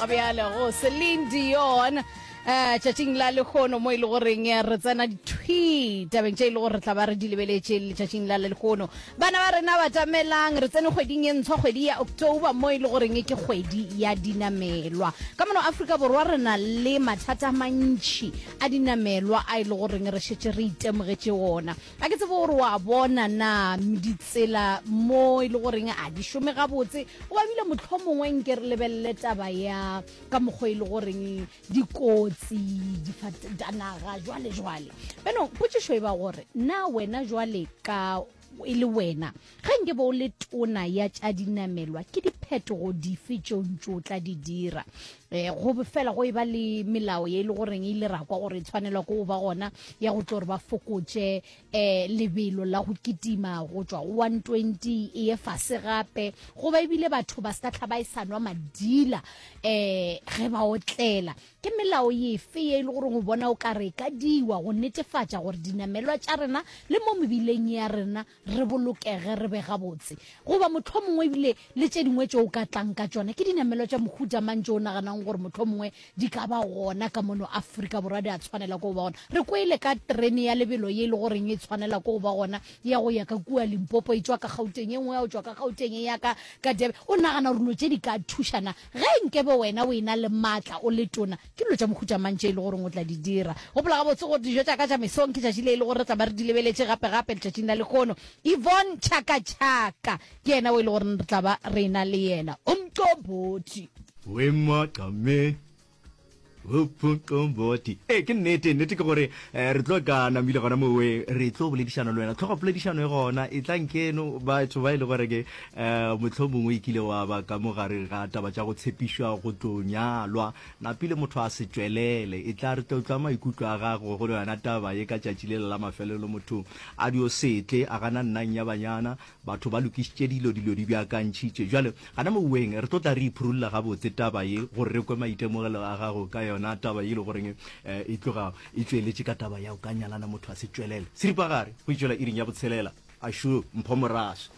bjale go celine dion um tšatšing la lekgono mo e le goreng eh, re tsena dithwi tabeng tše e le gore re tla ba re di lebeletše letšatšing la lekgono bana ba rena batamelang re tsene kgweding e ntshwa kgwedi ya october mo e le goreng ke kgwedi ya dinamelwa ka mono aforika borwa re na le mathata a mantšhi a dinamelwa a e le goreng re šetse re itemogetše ona A ke tsebe gore wa bona na ditsela mo e le goreng a di šome gabotse goba ebile mohlomongwe nke re lebelele taba ya ka mokgwa e le goreng dikotsi difatanaga jwale jwale benong potšišo e ba gore na wena jwale ka e le wena Ge nke be o le tona ya tša dinamelwa, ke diphetogo dife tše o ntše o tla di dira? Go be fela go eba le melao ye e le goreng e ile ra kwa gore e tshwanelwa ke go ba gona ya go tlo re ba fokotše um lebelo la go kitima go tšwa go one twenty e ye fase gape, goba ebile batho ba se ka hlaba e sa nwa madila um ge ba otlela. Ke melao efe ye e le goreng o bona o ka re e ka diwa go netefatša gore dinamelwa tša rena le mo mebileng ya rena re bolokege, re be gabotse. Goba mohlomongwe e bile le tše dingwe tšeo o ka tlang ka tšona. Ke dinamelwa tša mohuta mang tšeo o naganago gore mohlomongwe di ka ba gona ka mono Afrika Borwa, di a tshwanela ke go ba gona? Re kwele ka terene ya lebelo ye e le goreng e tshwanela ke go ba gona ya go ya ka kua Limpopo, e tšwa ka Gauteng, e nngwe ya go tšwa ka Gauteng e ya ka, ka Durban. O nagana gore dilo tše di ka thuša na? Ge nkebe wena o e-na le matla, o le tona, Ke dilo tša mohuta mang tše e lego gore o tla di dira? Gopola gabotse gore dijo tša ka tša mesong ke tšatši le e lego gore re tla ba re di lebeletše gape-gape letšatšing la lehono. Yvonne Chaka-Chaka ke yena o e lego gore re tla ba re e-na le yena. Umqombothi. Wemmaqa mme Umqombothi. Ee, ke nnete. Nnete ke gore re tlo ka Namile gona moweng. Re tlo boledišana le wena. Tlhogopoledišano e gona. Etlang keno batho ba e le gore ke Ee, mohlomongwe e kile wa ba ka mo gare ga taba tša go tshepišwa go tlo nyalwa. Napile motho a se tšwelele. Etla re tlo tlwa maikutlo a gago go yona taba ye ka tšatši lela la mafelelo. Motho a dio se tle a gana nnang ya banyana. Batho ba lokišitše dilo, dilo di beakantšhitše. Bjale, gana moweng re tlo tla re iphurulla gabotse taba ye, gore re kwe maitemogelo a gago ka yona taba ye e le goreng e tloga e tšweletše ka taba ya go ka nyalana motho a se tšwelele. Seripagare, go e tšwela iring ya botshelela. Ashu, mpho moraso.